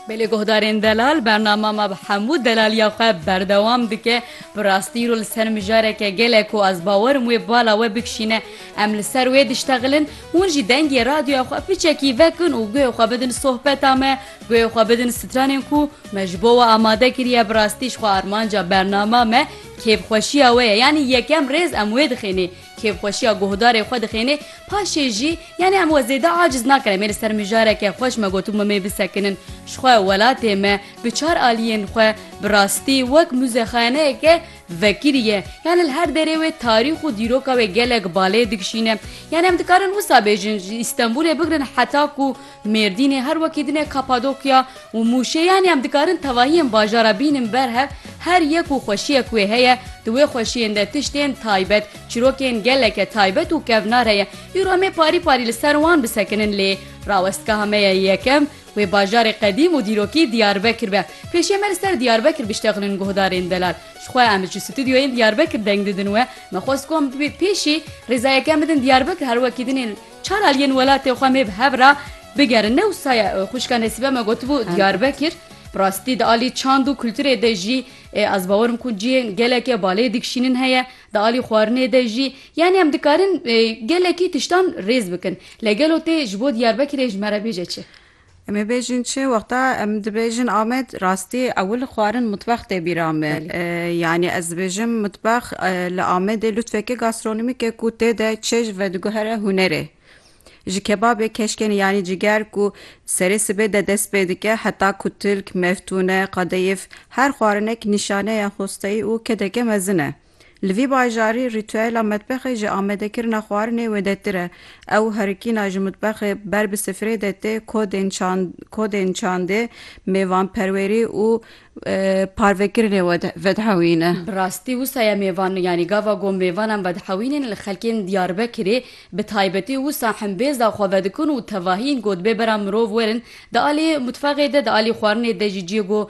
Bi lê guhdarên delal bernama me bi hemû delaliya xwe berdewam dike bi rastî ro li ser mijareke gelek ku ez bawerim wê bala we bikişîne em li ser wê diştexilin hûn jî dengê radyoya xwe piçekî vekin û guhê xwe bidin sohbeta me guhê xwe bidin stranên ku me ji bo we amade kiriye bi rastî jixwe armanca bernama me kêfxweşiya we ye yanî yekem rêz em wê dixênê Kêfxweşiya guhdarê xwe dixêne, paşê jî, yanî em we zêde aciz nakin, em ê li ser mijareke xweş me got û me mê bisekinin. Ji xwe, welatê me, bi çar aliyên xwe, bi rastî wek muzexaneyeke vekirî ye. Yanî li her derê wê tarîx û dîroka wê gelek balê dikişîne. Yanî em dikarin wisa bêjin, ji Îstenbûlê bigirin heta ku, Mêrdînê her wekî din e Kapadokya û Mûşê yanî em dikarin tevahiyên bajara bînin ber hev her yek û xweşiyek wê heye di wê xweşiyên de tiştên taybet çîrokên geleke taybet û kevnar heye îro em ê parî parî li ser wan bisekinin lê rawestgeha me ye yekem wê bajarê qedîm û dîrokî Diyarbekir be pêşiya me li ser Diyarbekir biştexinin guhdarên delal ji xwe em ji stûdyoyên Diyarbekir deng didin we me xwest ku em bibê pêşî rêza yekem bidin Diyarbekir her wekî din ê Çar aliyên welatê xwe mê bi hev re bigerin ne wisa ye. Xwişka Nesîbe me gotibû Diyarbekir bi rastî di alî çand û kulturê de jî ê ez bawer im ku cihên geleke balê dikşînin heye di alî xwarinê de jî yanî em dikarin gelekî tiştan rêz bikin. Lê gelo tê ji bo Diyarbekirê ji me re bêje çi? Em ê bêjin çi? Wexta em dibêjin Amed, rastî ewil xwarin mitbex tê bîra me. Yanî ez dibêjim mitbex li Amedê lûtfeke gastronomîk e ku tê de çêj vediguhere hunerê. Ji kebabê keşkenê yanî ciger ku serê sibê de dest pê dike heta ku tilk, meftûne, qadeyif her xwarinek nîşaneya xwesteyî û kedeke mezin e. Li vî bajarî rîtûela metbexê ji amadekirina xwarinê wêdetir e. Ew herikîna ji mutbexê ber bi sifrê de tê kodên kodên çandê, mêvanperwêrî û parvekirinê vedhewîn e. Bi rastî wisa ye mêvan yanî gava ku mêvanan vedhewînên li xelkên Diyarbekirê bi taybetî wisa himbêza xwe vedikin û tevahî yên ku dibê bera mirov werin di alî mutfexê de di alî xwarinê de jî ciyê ku